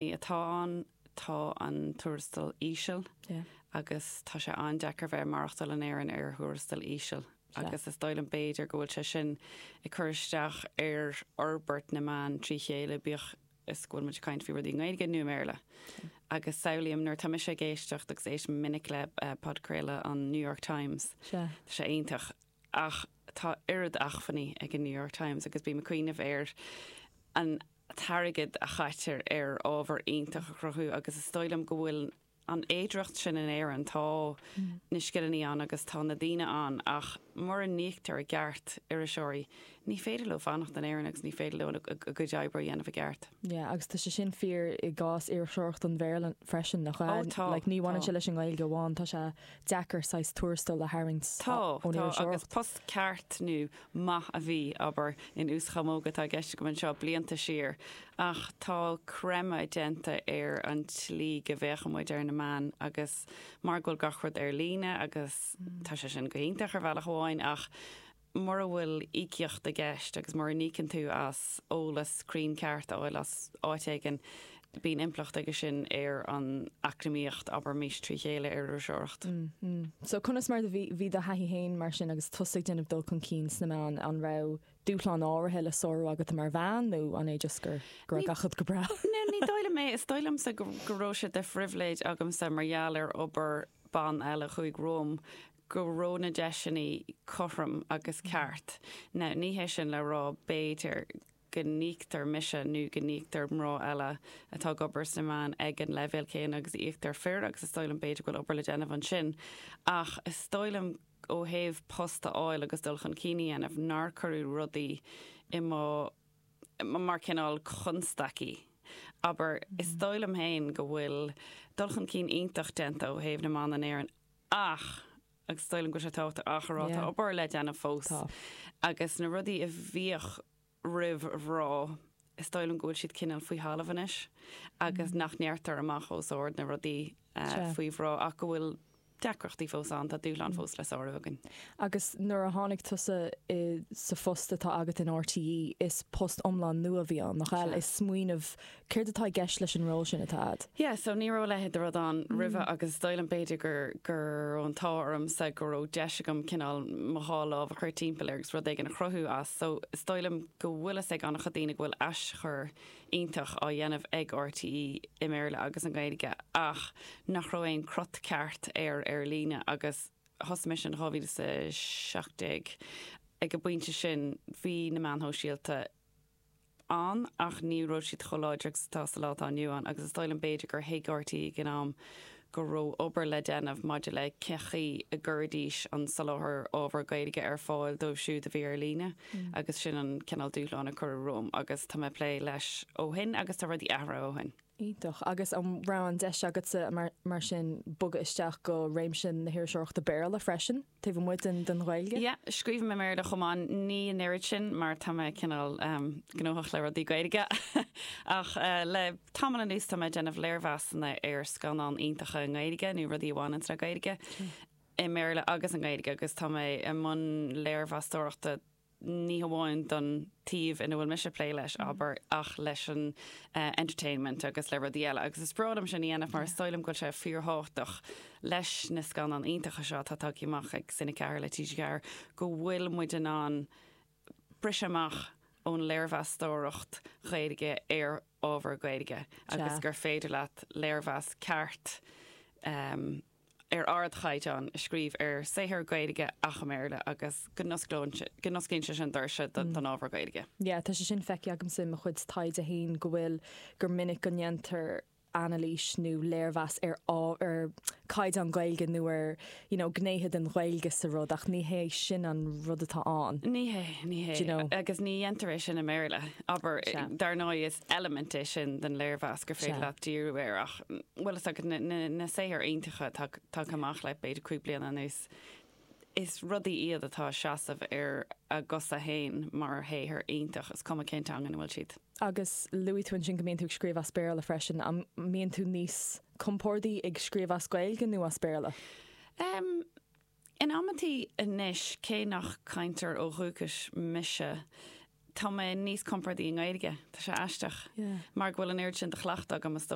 atá ann, tá an tuarastal íseal agus tá sé an-deacair bheith ag maireachtáil in Éirinn ar thuarastal íseal agus is dóigh liom b'fhéidir go bhfuil sé sin ag cur isteach ar fhorbairt na meán trí chéile, bíodh is go bhfuil muid ag caint faoi rudaí i nGaeilge nó i mBéarla. Agus samhlaím nuair atá mise ag éisteacht, agus éistim go minic le podchraoladh an New York Times, tá sé iontach, Ach tá oiread acmhainní ag an New York Times agus bím ag cuimhneamh ar an t-airgead a chaitear ar ábhar iontach a chruthú agus is dóigh liom go bhfuil an fhéidearthacht sin in Éirinn. Tá na scileanna ann agus tá na daoine ann ach mura n-íoctar i gceart iriseoirí Ní féidir leo fanacht in Éirinn agus ní féidir leo a gcuid oibre a dhéanamh i gceart. Yeah, agus tá sé sin fíor i gcás iriseoireacht an Bhéarla freisin, nach bhfuil? Oh, tá, Like, ní bhaineann sé tá. leis an nGaeilge amháin, tá sé deacair saghas tuarastal a tharraingt Tá, ón tá, agus iriseoireacht. post ceart nó maith a bhí, abair, in uaschamóga atá i gceist agam anseo blianta siar, ach tá creimeadh déanta ar an tslí go bhféachann muid ar na meáin agus mar go bhfuil gach rud ar líne agus tá sé sin go hiontach ar bhealach amháin ach mura bhfuil íocaíocht i gceist agus mura n-íocann tú as eolas cruinn ceart a fháil as áit éigin, bíonn impleacht aige sin ar an eacnamaíocht, abraimis, trí chéile ar iriseoireacht. So, conas mar a bhí do thaithí féin mar sin agus tusa ag déanamh dul chun cinn sna meáin, an raibh dúshláin áirithe le sárú agat mar bhean nó an é just gur, go raibh gach rud go breá? Ní, ní dóigh liom é. Is dóigh liomsa go, go raibh sé de phribhléid agamsa mar gheall ar obair ban eile a chuaigh romham, go raibh na deiseanna cothrom agus ceart. Now, ní hé sin le rá, b'fhéidir, go n-íoctar mise nó go n-íoctar mná eile atá ag obair sna meáin ag an leibhéal céanna agus a íoctar fir agus is dóigh liom, b'fhéidir go bhfuil obair le déanamh ansin ach is dóigh liom ó thaobh post a fháil agus dul chun cinn a dhéanamh nár cuireadh rudaí i mo, mar cineál constaicí, abair. Is dóigh liom féin go bhfuil dul chun cinn iontach déanta ó thaobh na mban in Éirinn Ach, agus is dóigh liom go bhfuil sé tábhachtach a rá, tá obair le déanamh fós. Agus na rudaí a bhíodh á rá, is dóigh liom go bhfuil siad cineál faoi thalamh anois agus nach ndeirtear amach os ard na rudaí faoi mhná ach go bhfuil deacrachtaí fós ann, tá dúshláin fós le sárú againn. Agus nuair a tháinig tusa sa phost atá agat in RTÉ, is post iomlán nua a bhí ann, nach ea? Is smaoineamh Céard atá i gceist leis an ról sin atá agat? Yeah, so ní raibh a leithéid de rud ann roimhe agus is dóigh liom b'fhéidir gur, go raibh an t-ádh ormsa go raibh deis agam cineál mo dhá lámh a chur timpeall air agus rud éigin a chruthú as. So is dóigh liom go bhfuil a fhios ag an-chuid daoine go bhfuil aschur iontach á dhéanamh ag RTÉ i mBéarla agus i nGaeilge ach nach raibh aon cruth ceart air ar líne agus thosaigh mise in 2017. Ag an bpointe sin bhí na meáin shóisialta, ann, ach ní raibh siad chomh láidir agus atá sa lá atá inniu ann, agus is dóigh liom, b'fhéidir, gur thuig RTÉ ag an am go raibh obair le déanamh maidir le cén chaoi a gcuirfidís an soláthar ábhar Gaeilge ar fáil dóibh siúd a bhí ar líne, agus sin an cineál dúshláin a cuireadh romham, agus tá mé ag plé leis ó shin, agus tá rudaí athraithe ó shin. Iontach. Agus an raibh an deis agatsa, mar sin, bogadh isteach go réimse na hiriseoireachta Béarla freisin? taobh amuigh den Ghaeilge? Yeah, scríobhaim i mBéarla chomh maith, ní an oiread sin mar tá mé cineál gnóthach le rudaí Gaeilge ach le tamall anuas tá mé ag déanamh léirmheasanna ar scannáin iontacha i nGaeilge nó rudaí a bhaineanns le Gaeilge i mBéarla agus i nGaeilge agus tá mé i mbun léirmheastóireachta ní hamháin don taobh ina bhfuil mise ag plé leis, abair, ach leis an entertainment agus le rudaí eile. Agus is breá liom sin a dhéanamh mar is dóigh liom go bhfuil sé fíorthábhachtach leis na scannáin iontacha seo atá tagtha amach ag Cine 4 le TG4 go bhfuil muid in ann briseadh amach ón léirmheastóireacht Ghaeilge ar ábhar Gaeilge agus gur féidir leat léirmheas ceart a ar ardchaighdeán a scríobh ar shaothar Gaeilge ach i mBéarla agus go n-osclaíonn sé sin doirse don ábhar Gaeilge. Yeah, tá sé sin feicthe agamsa i mo chuid taighde féin, go bhfuil, gur minic go ndéantar anailís nó léirmheas ar ábhar, ar chaighdeán Gaeilge nó ar you know gnéithe den Ghaeilge sa rud ach ní hé sin an rud atá ann. Ní hé, ní hé. Agus ní dhéantar é sin i mBéarla. Abair, dar ndóigh is eilimint é sin den léirmheas gur féidir leat díriú air ach bhfuil fhios agat, na saothair iontacha atá tagtha amach le b'fhéidir cúig bliana anuas, is rudaí iad atá ag seasamh ar a gcosa féin mar shaothar iontach, is cuma cén teanga ina bhfuil siad. Agus luaigh tú ansin go mbíonn tú ag scríobh as Béarla freisin, an mbíonn tú níos compórdaí ag scríobh as Gaeilge nó as Béarla? Em, in amantaí anois, cé nach cainteoir ó dhúchas mise, tá mé níos compórdaí i nGaeilge, tá sé aisteach, mar go bhfuil an oiread sin de chleachtadh agam, is dócha.